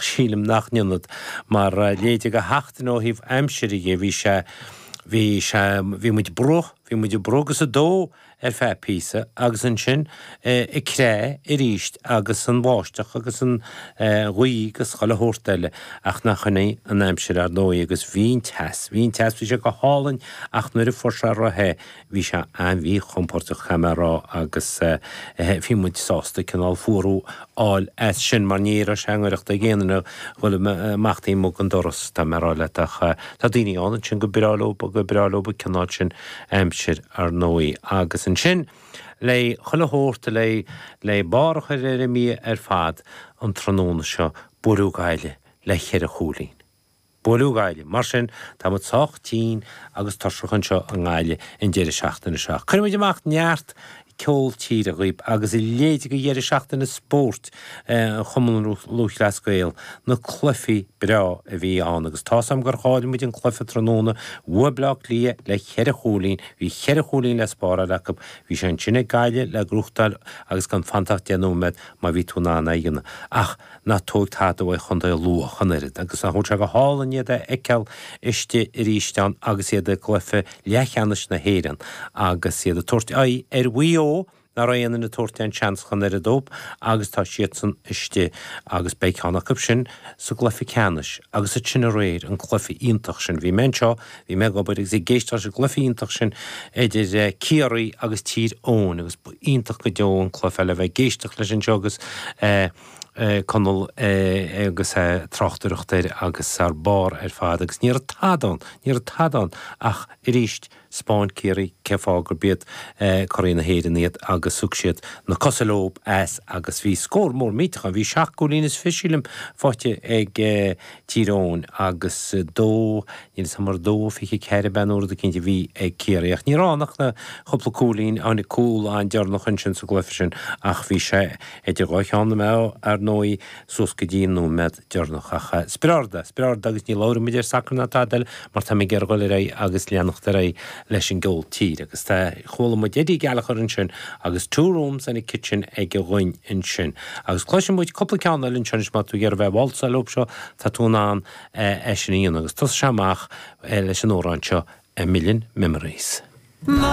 Sílim nach n-ionad mar a leithéid de sheachtain ó thaobh aimsire dhe. Bhí sé, bhí sé, bhí muid bruite, bhí muid ag bruith agus ag dó ar feadh píosa agus ansin ag creathadh arís agus an bháisteach agus an ghaoth agus chuile shórt eile ach nach shin í an aimsir ar ndóigh agus bhí an teas, bhí an teas, bhí sé go hálainn ach nuair a fuair sé róthe bhí sé an-mhíchompordach caithfidh mé a rá agus bhí muid sásta cineál fuarú a fháil as sin mar ní raibh sé i ngaireacht ag aon duine dhul amach taobh amuigh den doras tá mé a rá leat ach tá daoine ann ansin gur breá leo gur breá leo an cineál sin aimsir ar ndóigh agus ansin le chuile shórt le le barr a chur ar an mí-ádh ar fad an tráthnóna seo buaileadh Gaillimh le cheithre chúilín. Buaileadh Gaillimh. Mar sin, tá muid sách tinn agus tuirseach anseo i nGaillimh an deireadh seachtaine seo. Cuirfidh muid amach neart ceol tíre dhaoibh agus a leithéid de dheireadh seachtaine spóirt an Chumann Lúthchleas Gael, na cluichí breá a bhí ann agus tá's agam gur chaill muid an cluiche tráthnóna, bhuaigh Bleá Cliath le ceithre chúilín, bhí cheithre chúilín le spáráil acu, bhí sé ansin ag Gaillimh le gnóthachtáil agus gan fanta ach deich nóiméad má bhí tú in ann aige ach ná tóig tada uaidh Chontae Lú ach an oiread agus tá sé go hálainn iad a fheiceáil istigh arís ann agus iad i gcluiche leathcheannais na hÉireann agus iad ag tabhairt aghaidh ar Mhaigh Eo nach raibh aon duine ag tabhairt aon seans ach an oiread dóib agus tá siadsan istigh agus beidh ceann acu sin sa gcluiche ceannais agus iad sin aréir an cluiche iontach sin bhí mé anseo bhí mé ag obair agus ag éisteacht leis an gcluiche iontach sin idir Ciarraí agus Tír Eoghain agus ba iontach go deo an cluiche é le bheith ag éisteacht leis anseo agus Conall agus a' tráchtaireacht air agus thar barr ar fad agus ní raibh tada ann, ní raibh tada ann ach arís 'speáin Ciarraí cé fáth gur b'iad curaidh na hÉireann iad agus thug siad na cosa leob as agus bhí scór mór millteach ann, bhí seacht gcúilín is fiche sílim faighte ag Tír Eoghain agus dó, níl 'fhios a'm mar dó fiche ceathair ab ea nó rud eicínt a bhí ag Ciarraí ach ní raibh ann ach na cúpla cúilín, tháinig cúl an-deireanach ansin sa gcluiche sin ach bhí sé. Idir dhá cheann na meá, ar ndóigh, suas go dtí an nóiméad deireanach ach spriorda, spriorda agus ní labhróidh muid ar sacar ná tada eile mar tá muid ag iarraidh dhul ar aghaidh agus leanacht ar aghaidh leis an gceol tíre agus tá, chuala muid Eddie Gallagher ansin agus Two Rooms and a Kitchen aige dhúinn ansin agus cloisfidh muid cúpla ceann eile anseo anois má tá tú ag iarraidh bheith ag válsáil leo seo, tá tú in ann é sin a dhéanamh agus tosóidh sé amach leis an amhrán seo A Million Memories.